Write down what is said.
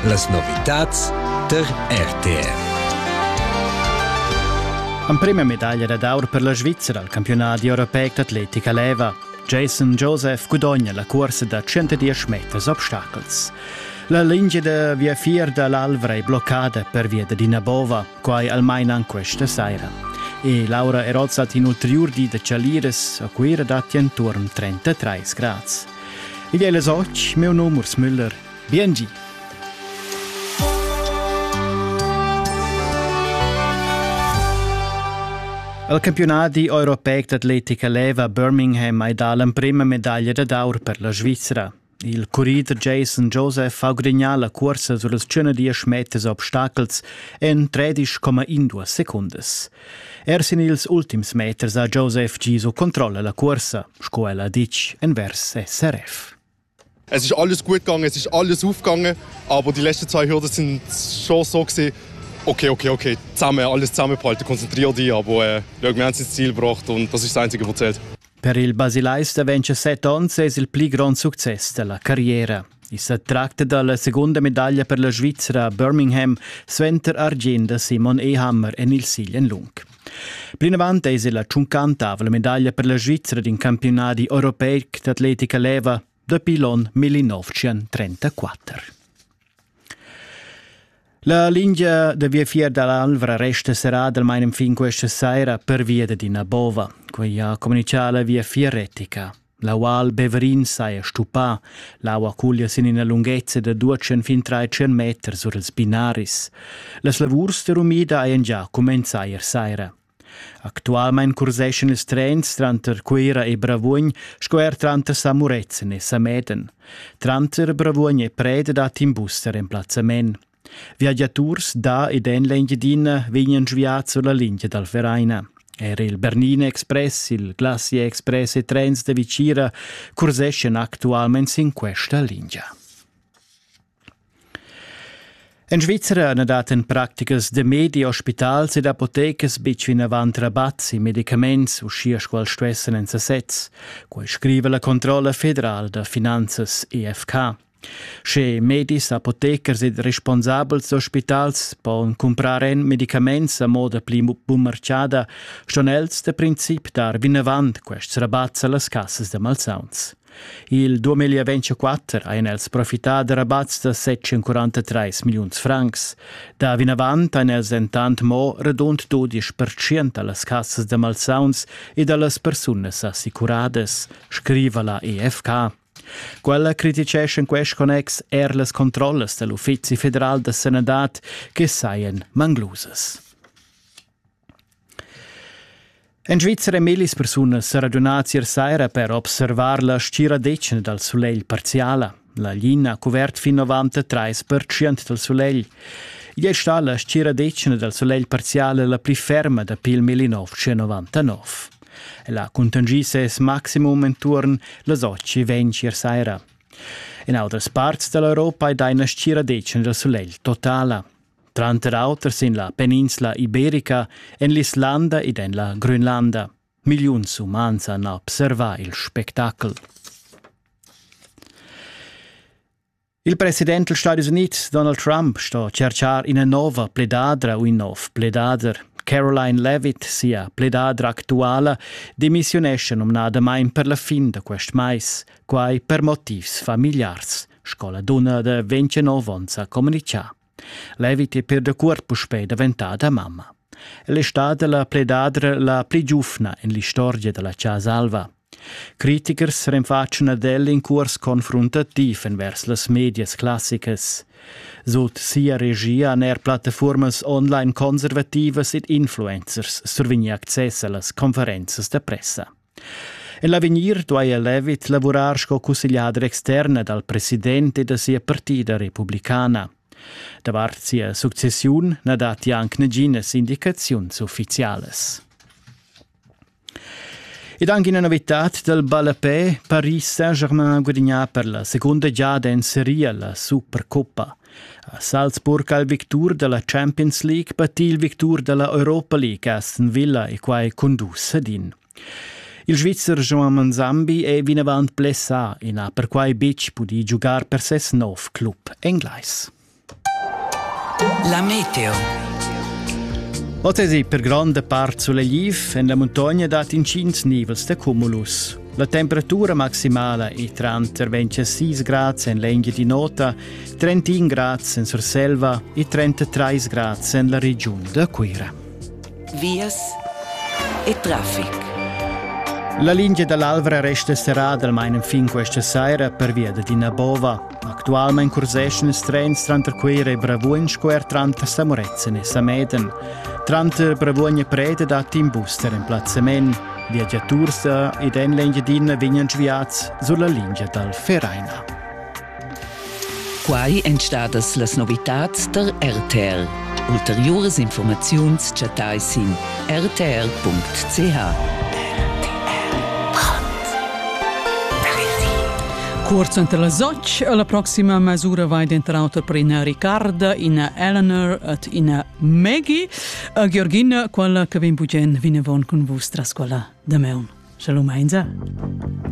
Las novitads tar RTR. Emprima medaglia dad aur per la Svizzera al campiunat europeic d'atletica leva. Jason Joseph gudogna la cursa da 110 meters obstacels. La lingia da viafier da l'Alvra è bloccada pervia da ina bova. Quai almain an questa saira. E Laura è rozzat in ulterior di da Chaliras, a Cuira datti enturn 33 grads. Igl è les och, meu nom Urs Müller. Biengi! Al campionadi europeic d'atletica leva Birmingham hai dà l'emprima medaglia da d'aur per la Svizra. Il currider Jason Joseph ha gudagnà la cursa sur las 110 meters obstacels en 13,2 secundas. Er sin ils ultims meters ha Joseph giso controlla la cursa, sco el ha ditg envers SRF. Es ist alles gut gegangen, es ist alles aufgegangen, aber die letzten zwei Hürden sind schon so gewesen, okay, okay, okay, zusammen, alles zusammenbehalten, konzentriere dich, aber äh, wir haben ins Ziel gebracht und das ist das Einzige, was zählt. Per il basilais da 27 onns es il pli grond success da la carriera. I sa tracta da la segunda medaglia per la Svizra a Birmingham suenter argient da Simon Ehammer en il silen lung. Plinavant es la tschuncantavla medaglia per la Svizra d'in campiunadi europeic d'atletica leva dapi l'on 1934. La lingia da viafier dall'Alvra resta serrada almain fin questa saira pervia d'ina bova. Quei ha comunicà la viafier retica. La Val Beverin saja stupà, l'aua cuglia sin ina lunghezza da 200 fin 300 meters sur ils binaris. Las lavurs da rumida hajan già cumenzà ier saira. Actualmein curseschan ils trens tranter Cuira e Bravuogn sco er tranter Samurezen e Sameden. Tranter Bravuogn e Pred dat in bus da remplazzament. Viagiaturs da ed en l'Engiadina vegnan sviads sulla linea dal Vereina. Er il Bernina Express, il Glacier Express e trens da Vicira curseschan actualmein sin questa linea. En Svizra na dat en practicas da medi ospitals ed apotecas betg vinavant rabat sin medicaments, uschia sco stuessan en sasez. Quai scriva la controlla federal da finanzas EFK. Sche medis, apotecars ed responsabels d'ospitals pon cumprar en medicaments a moda pli bumarciada, ston els da princip dar vinavant quests rabats a las cassas da malsauns. Il 2024 ein els profità da rabats da 743 milliuns francs. Da vinavant ein els entant mo radund 12% dallas cassas da malsauns e dallas persunas assicuradas, scriva la EFK. Quella criticescha in quest connex er las controllas dell'Uffizi federal da sanadad che saien manglusas. En Svizra ein millis persunas seragiunà tier saira per observar la stgiradetgna dal sulegl parziala. La lina ha cuvert fin avant trais pertschient dal sulegl. Igl è stà la stgiradetgna dal sulegl parziale la pli ferma dapi il 1999. Ella ha contingì ses maximum enturn las 8.20 ier saira. En autras parts da l'Europa è da ina stgiradetgna dal sulegl totala. tranter auter sin la peninsla iberica, en l'Islanda ed en la Grönlanda. Milliuns umans han observà il spectacel. Il president degli Stati Uniti, Donald Trump, sto cercar ina nova pledadra u in nov pledader. Caroline Levitt, sia pledadra actuala, demissiunesce numnadamain per la fin da quest mais, quai per motivs familiars. sco la dunna da 29 onns ha communicà. Leviti per da cuort puspei daventada mamma. El è stata la pledadra la pli giufna in l'istorgia della casa alva. Critikers renfaccian ad el in curs confruntativ envers las medias classicas. Sut sia regia han er plattaformas online conservativas ed influencers survigni access a las conferenzas da pressa. En l'avegnir duaja Levitt lavurar sco cussegliader externa dal president e da sia partida republicana. Davart sia successiun na datti anc naginas indicaziuns uffizialas. Ed anche una novità del ballapé, Paris Saint-Germain guadagnà per la seconda giada in Serie la Supercoppa. A Salzburg ha il victur dalla Champions League pattì il victur dalla Europa League Aston Villa e quai cun dus sedin. Il Svizzer Joan Manzambi è vinavant blessà e n'ha perquai betg pudì giugar per ses nov club englais. La meteo. Oz per gronda part sulegliv en la muntogna dat intgins nivels da cumulus. La temperatura maximala è tranter 26 grads en l'Engiadina nota, 31 grads en Surselva e 33 grads en la regiun da Cuira. Vias e traffic. La linea dall'Alvra resta serrada almain fin questa sera pervia da Dinabova. Actualmein curseschan ils trens tranter Cuera e Bravuogn sco er tranter Samuretzen e Sameden. Tranter Bravuogn e Preda dat in bus der emplazzament. Viagiaturs ed en l'Engiadina vegnan sviads sulla lingia dal Vereina. Quai èn stadas las novitads da RTL. Ulteriuras infurmaziuns chattais sin rtr.ch. Cuort suenter las otg e la proxima mesura vai denter auter per ina Ricarda, ina Eleanor et ina Maggie. A Georgina, quella che vin bugen vinavon cun vus tras quella da meun. Shalom Heinze.